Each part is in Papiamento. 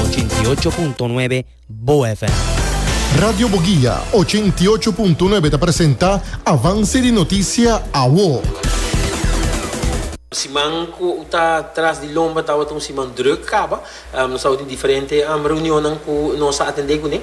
Ochenta i ocho punto nuebe Bo FM. Radio Boguia ochenta i ocho punto nuebe ta presenta Avance di Noticia Awo. Siman ku ta tras di lomba tabata un siman drùk kaba. Nos tabata tin diferente reunionnan ku nos a atendé kuné.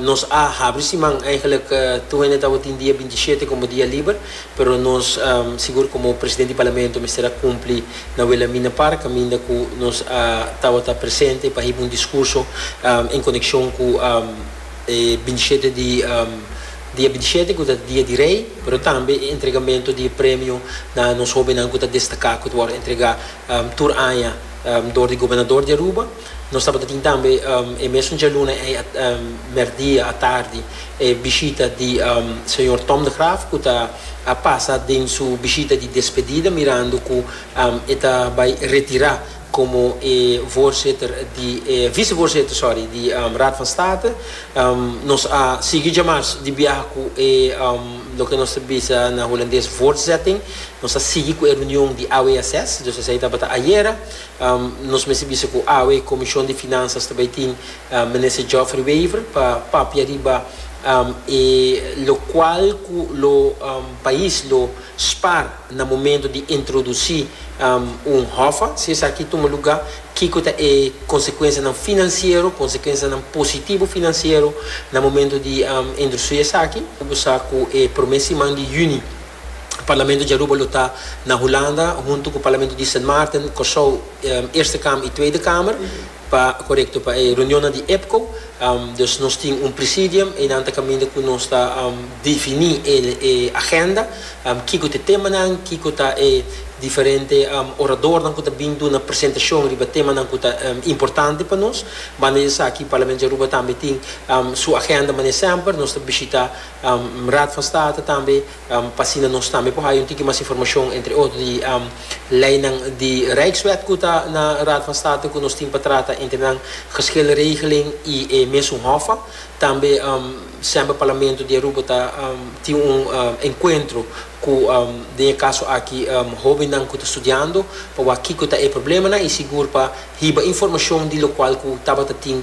Nos a habri siman, eigenlik tur hende tabatin tin dia binti shete komo dia liber, pero nos sigur komo presidente di parlamento mester a kumpli na Wilhelmina Park kaminda ku nos a tabata presente pa hiba un diskurso en konekshon ku e binti shete di dia binti shete ku ta dia di rei, pero tambe e entregamentu di e premio na nos hobennan ku ta destaká ku ta wòrdu entregá tur aña dor di gobernador di Aruba. Nos tabata tin tambe e mesun djaluna ei mèrdia atardi e bishita di señor Tom de Graaf ku ta a pasa den su bishita di despedida mirando ku e ta bai retirá komo e voorzitter di e vicevoorzitter sorry di Raad van State. Nos a sigui djamars di biaha ku e loke nos ta bisa na Hulandes voortzetting. Nos a sigui ku e reunion di AWSS, dus esei tabata ayera. Nos mester bisa cu awe e Comision di Finansas ta bay tin Minister Geoffrey Wever pa papia riba e locual cu lo pais lo spaar na momento di introduci un hoffa. Si esaki tuma luga, kico ta e consecuencianan financiero, consecuencianan positivo financiero na momento di introduci esaki? Cu bo sa cu e prome siman di Juni Parlamento di Aruba lo ta na Hulanda huntu ku parlamento di Sint Maarten, Kòrsou, Eerste Kamer i Tweede Kamer pa korekto pa e reunionnan di EPCO. Dus nos tin un presidium, einan ta kaminda ku nos ta definí e agenda, kiko ta e temanan, kiko ta e diferente oradornan ku ta bin duna presentashon riba temanan ku ta importante pa nos. Banda di esaki parlamento di Aruba tambe tin su agenda manera semper nos ta bishitá Raad van State tambe pa asina nos tambe por haña un tiki mas informashon entre otro di leinan di Rijkswet ku ta na Raad van State ku nos tin pa trata entre nan Geschilregeling i e mesun Hof. Tambe semper Parlamento di Aruba ta tin un enkuentro ku den e kaso aki hobennan ku ta studiando pa wak kiko ta e problemanan i sigur pa hiba informashon di lokual ku tabata tin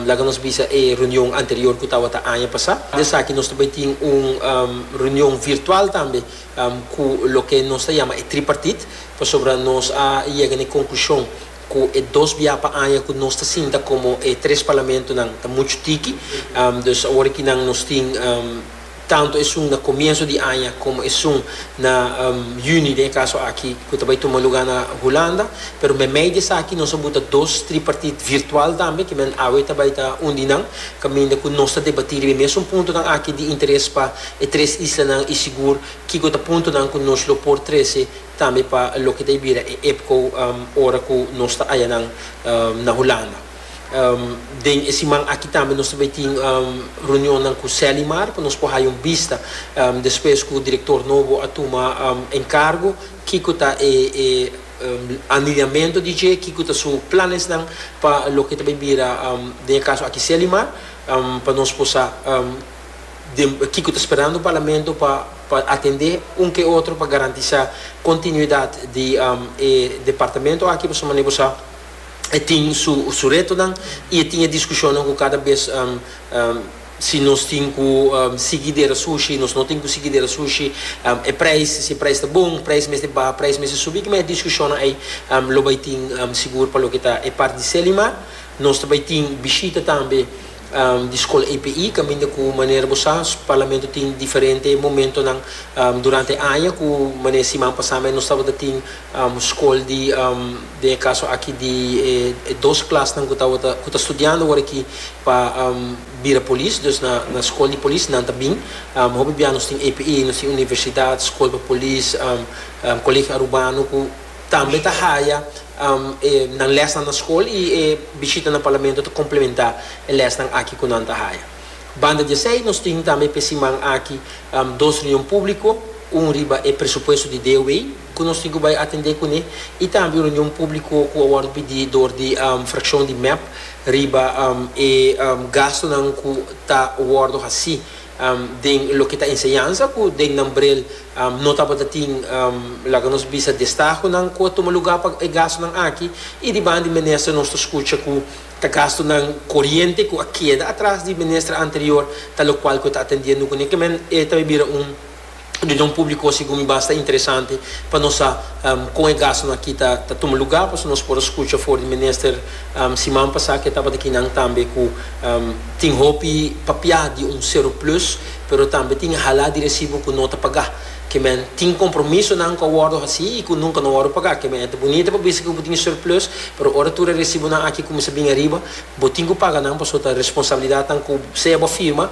Laga nos bisa e reunion anterior cu tawata aña pasa. Den esaki nos ta bay tin un reunion virtual tambe cu loke nos ta yama e tripartite pasobra nos a yega na e conclusion cu e dos bia pa aña cu nos ta sinta como e tres parlamentonan ta mucho tiki. Dus awor aki nan nos tin. tantu esun na komienso di aña komo esun na yüni den e kaso aki ku ta bai tuma lugá na Hulanda, pero meimei di esaki nos a buta dos tripartit virtual tambe ku men awe ta bai ta un di nan kaminda ku nos ta debatí riba e mesun puntonan aki di interes pa e tres islanan i sigur kiko ta puntonan ku nos lo por trese tambe pa loke ta bira e EPCO ora ku nos ta aya nan na Hulanda. Den e siman aki tambe nos ta bay tin reunionnan cu Selimar pa nos por haya un bista despues cu director nobo a tuma encargo kico ta e aniliamento di dje, kico ta su planesnan pa loke ta bay bira den e caso aki Selimar pa nos por sa den kico ta sperando Parlamento pa pa atende un ke otro pa garantisa continuidad di e departamento aki pasobra mane bo sa. e tin su retonan y e tin e discusionnan cu cada bes si nos tin cu sigui dera sushi, nos no tin cu sigui dera sushi, e prijs, si e prijs ta bon, prijs mester baha, prijs mester subi, kiman e discusionnan ey lo bay tin sigur pa loke ta e part di Selimar. Nos ta bay tin bishita tambe di Skol APE kaminda ku manera bo sa Parlamento tin diferente momentonan durante aña ku mane siman pasá nos tabata tin skol di den e kaso aki di e dos klasnan ku tabata ku ta studiando ora aki pa bira polis dus na skol di polis nan ta bin hopi biaha nos tin APE nos tin universidat skol pa polis Kolegio Arubano ku Tambe ta haya e nan lesnan na skol i e bishita na Parlamento ta komplementá e lesnan aki ku nan ta haya. Banda di esei nos tin tambe p'e siman aki dos reunion públiko, un riba e presupuesto di DOW ku nos tin ku bai atendé kuné i tambe un reunion públiko ku a wòrdu pidi dor di frakshon di mep riba e gastunan ku ta wòrdu hasí den loke ta enseñansa ku den nan brel no tabata tin laga nos bisa destahonan ku a tuma lugá pa e gastunan aki i di banda di minister nos ta skucha ku ta gastunan koriente ku a keda atras di minister anterior talokual ku e ta atendiendo kuné kimen e ta bira un Reunion públiko segun mi basta interesante pa nos sa kon e gastunan aki ta tuma lugá pasobra nos por a skucha for di minister siman pasá ke tabata kinan tambe ku tin hopi papiá di un seroplus pero tambe tin e halá di resibo ku no ta pagá kimen tin kompromisonan ku a wòrdu hasí i ku nunka no wòrdu pagá kimen e ta bunita pa bisa ke bo tin e seroplus pero ora tur e resibonan aki kuminsá bini ariba bo tin ku paga nan pasobra ta responsabilidatnan ku sea bo firma